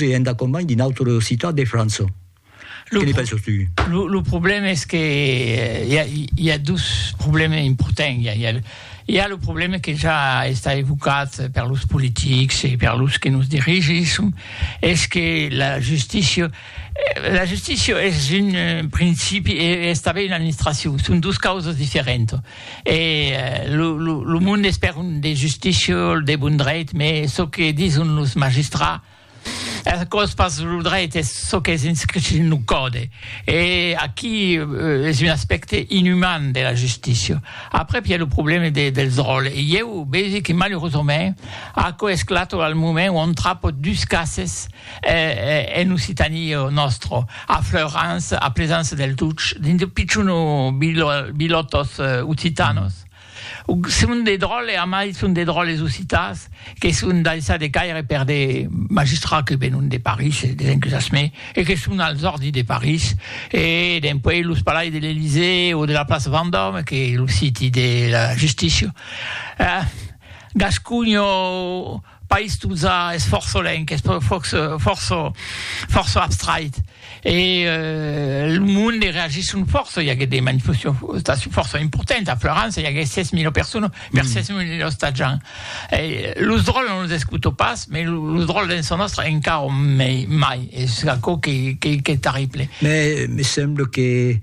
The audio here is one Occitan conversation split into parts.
e en dacompanhe d'una autre citat de França. Que ne penses tu? Lo, lo problème es que i a, i a dus problèmes importants. I a, i a, i a lo problème que ja està evocat per los politics e per los que nos dirigisson, es que la justícia, la justícia es un principi e es tanben una administracion, son dos causas diferentas. E lo monde es per un de justícia, un de bon dreit, me çò que dison los magistrats es aquò's pas lo dreit, es çò qu'es inscrit dins lo còde. E aquí es un aspècte inumàn de la justícia. Après i a lo problème dels ròles. E ieu vegi que malurosament aquò esclata al moment ont trapò dus cases, en Occitanie o nòstro, a Fleurans, a Plesans del Tuch, dins de pichons bilòtos occitanos, son de dròlles, a mai son de dròlles occitans, que son daissats de caire per de magistrats que venon de París, des enquisasments, e que son als òrdis de París, e dempuèi los palais de l'Elysée o de la plaça Vendòme, qu'es lo siti de la justícia. Gasconha o. País Tuza es fòrça lenc, es fòrça abstrait e lo monde reagisson fòrça, i aguèt de manifestacions fòrça importantes a Florança, i aguèt 6.000 personas per 6.000 ostatjants. Los dròlles non los escuto pas, mas los dròlles dens son òstre encara mai, es aquò qu'es terrible. Mès me sembla que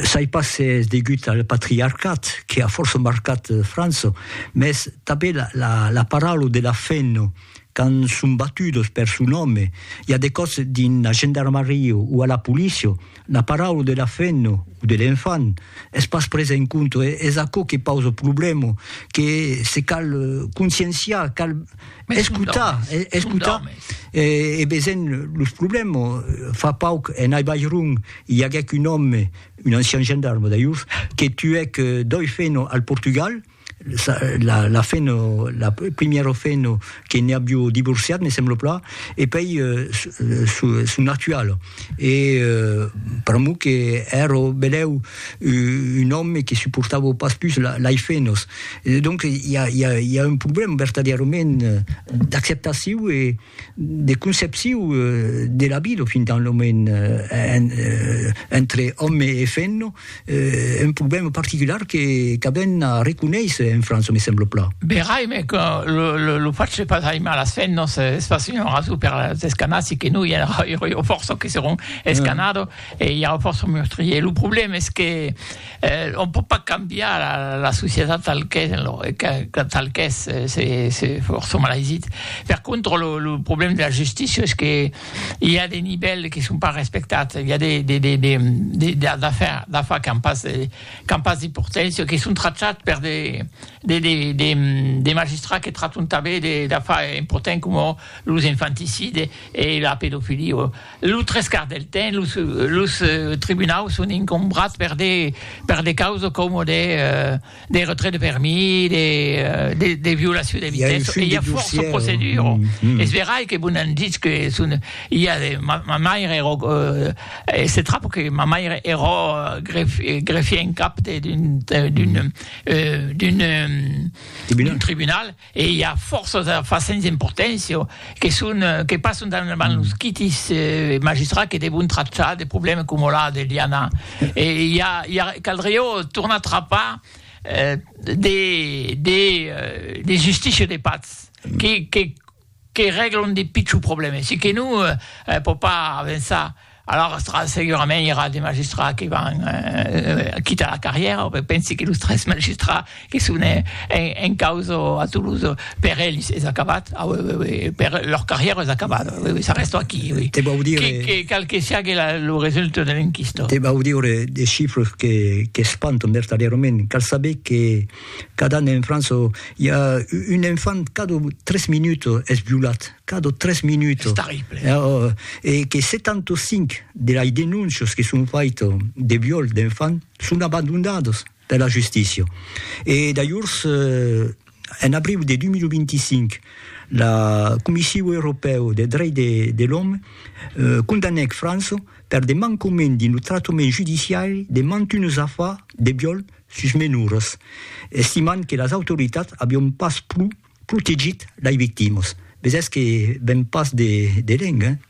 soi pas s'es degut al patriarcat que a fòrça marcat França. mès tanben la paraula de la fen, quand son batudos per son nòme, i a de còps dins la gendarmaria o a la polícia, la paraula de la fen o de l'enfant es pas presa en compte, es aquò que pausa problèma, que se cal conscienciar, cal escotar, escotar e veisèm los problèmas, fa pauc en Aibairon i aguèc un òme un ancian gendarme d'Aiuf que tuèc doi feno al Portugal, la feno, la primièra feno que ne abiu divorciat, me sembla plan, e pei son actuala. E pr'amor que èra benèu un òme que suportava pas pus lei fenos. Donc i a un problèma vertadièrament d'acceptaciu e. de concepciu de la vida fin tant lo moment entre òme e femna, un problèma particular que qu'avèn a reconéisser en França, me sembla plan. Verai, me que lo lo fach de pas aimar las femnas es pas una rason per las escanar, si que non i aurà fòrça que serón escanado e i aurà fòrça meurtriers. Lo problèma es que Eh, on pòt pas cambiar la, la societat tal qu'es, lo, que, tal qu'es, se, se fòrça malaisit. Per contra, lo, lo problèm de la justícia es que i a de nivèls que son pas respectats, i a de, de, de, de, de, de d'afar, d'afar qu'an pas, qu'an pas d'importància, que son trachats per de, de, de, de, de magistrats que trachon tanben de, d'afar importants coma los infanticides e la pedofilia. Lo tres quarts del temps, los, los tribunaus son incombrats per de, per de causes coma de, de retrait de permis, de, de, de violacion de vitessa, e i a fòrça procedura. Es verai que vos n'an ditz que son, i a de, ma, ma maire era, e se trap que ma maire era gref, greffier en cap de, d'un, d'un, d'un, d'un tribunal, E i a fòrça d'afars sens importància que son que passan davant los quitis magistrats que devon trachar de problèmas coma la de Liana. E i a i a caldriá tornar trapar de de de justícia de patz que que que règlon de pichons problèmes, se que non hè pò pas avançar a lors tra segurament i era de magistrats que van quitar la carrièra, pe pensi que los tres magistrats que son en causa a Toulouse per ells es acabat, per lor carrièra es acabat, s'arrèsto aquí, oui, que cal que siague lo resultat de l'enquista. Te vau dire de chifres que qu'espantan vertadièrament, cal saber que. Cada an en França i a un enfant cada tres minuts es violat, cada tres minuts. Es terrible. E que 75 de las denóncias que son faitas de viol d'enfant son abandonadas per la justícia. E d'alhors, en abriu de 2025, la Comissiu Europèu de Drech de l'Òme condanèc França per de mancament dins lo tractament judiciari de mantunes afars de viol sus menors, estimant que las autoritats avion pas pro protegit lei victimas. Ves es que ven pas de de lenga, eh?